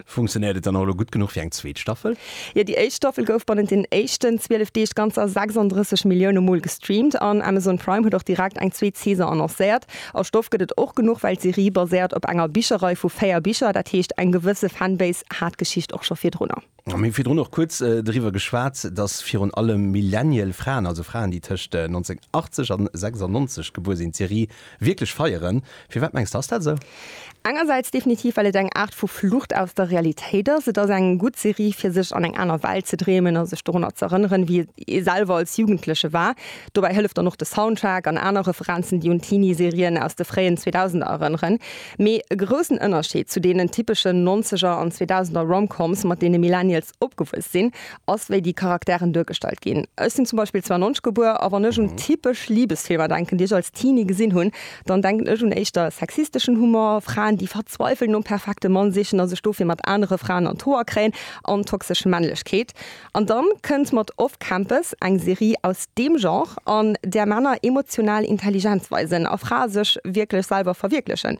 Funktionéiert et dann och elo gutt genuch fir eng zweet Staffel? Jo, déi éischt Staffel gouf bannent den éischten 12 Deeg ganzer 36 Millioune Mol gestreamt an Amazon Prime huet och direkt eng zweet Saison annoncéiert. A Stoff gëtt et och genuch, well d'Serie baséiert op enger Bicherrei vu véier Bicher, dat heescht eng gewësse Fanbase hat d'Geschicht och scho virdrunner. Mir hu virdrun och kuerz driwwer geschwat, dass virun allem Millennial Fraen, also Fraen, déi tëscht 1980 an 96 gebuer sinn, d'Serie Wierklech feieren? Firwat mengs de ass dat esou? Engersäits definitiv, well et eng Aart vu Flucht aus der Realitéit ass. Et ass eng gutt Serie fir sech an eng aner Welt ze dreemen a sech dorunner z'erënneren, wéi ee selwer als Jugendleche war. Dobäi hëlleft dann och de Soundtrack an aner Referenzen, déi un Teenie-Serien aus de fréien Zweedausender erënneren. Mee e groussen Ënnerscheed zu deenen typeschen Nonzeger an Zweedausender Rom-Coms, mat deene Millennials opgewuess sinn, ass, wéi déi Charakteren duergestallt ginn. Ech sinn zum Beispill 92 gebuer, a wann ech un typesch Libesfilmer denken, déi ech als Teenie gesinn hunn, dann denken ech un éischter sexisteschen Humor, Fraen, déi verzweiffelt nom perfekte Mann sichen a sech dofir mat anere Fraen an d'Hoer kréien, an toxesch Männlechkeet. An dann kënnt mat Off Campus eng Serie aus deem Genre, an där Männer emotional Intelligenz weisen a Frae sech wierklech selwer verwierklechen.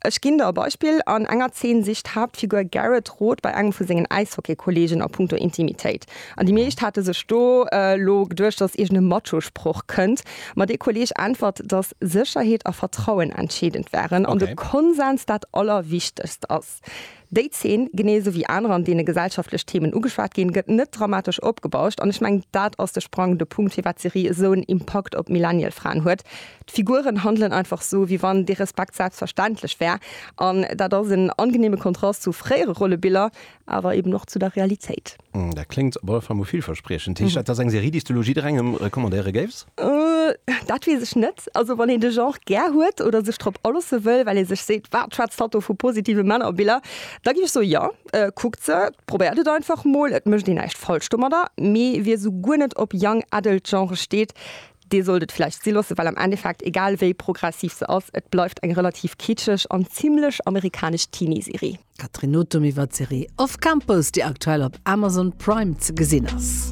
Ech ginn der e Beispill, An enger Zeen sicht d'Haaptfigur Garrett Rot bei engem vu sengen Äishockeykolleegen a punkto Intimitéit. An déi meescht hate sech do elo geduecht, datt iergend e Macho-Sproch kënnt, ma dee Kolleeg äntwert, datt Sécherheet a Vertrauen entscheedend wären an de Konsens dat Allerwichtegst ass. Déi Zeen, genee esou wéi aner, an deene gesellschaftlech Themen ugeschwat ginn, gëtt net dramatesch opgebauscht. An ech mengen, dat ass de sprangende Punkt, firwat d'Serie esou en Impakt op d'Millennial-Fraen huet. D'Figuren handelen einfach esou, wéi wann dee Respekt selbstverständlech wär. An dat ass en angeneeme Kontrast zu fréiere Rollebiller, awer eben och zu der Realitéit. Dat kléngt op alle Fall mol villverspriechend. Heescht dat, dass eng Serie, déi s du elo jidderengem recommandéiere géifs? Dat weess ech net. Also wann een de Genre gär huet oder sech drop alosse wëll, well ee sech seet, Wat schwätzt hatt do vu positive Männerbiller? Da géif ech soe, Jo, kuckt se, probéiert et einfach mol. Et mécht een näischt falsch domadder. Mee wie esou guer net op Young Adult Genrë steet, dee sollt et vläicht si loosse, well am Endeffekt, egal wéi progressiv se ass, et bleift eng relativ kitscheg an zimlech amerikanesch Teenie-Serie. Catherine Nothum iwwer d'Serie Off Campus, déi aktuell op Amazon Prime ze gesinn ass.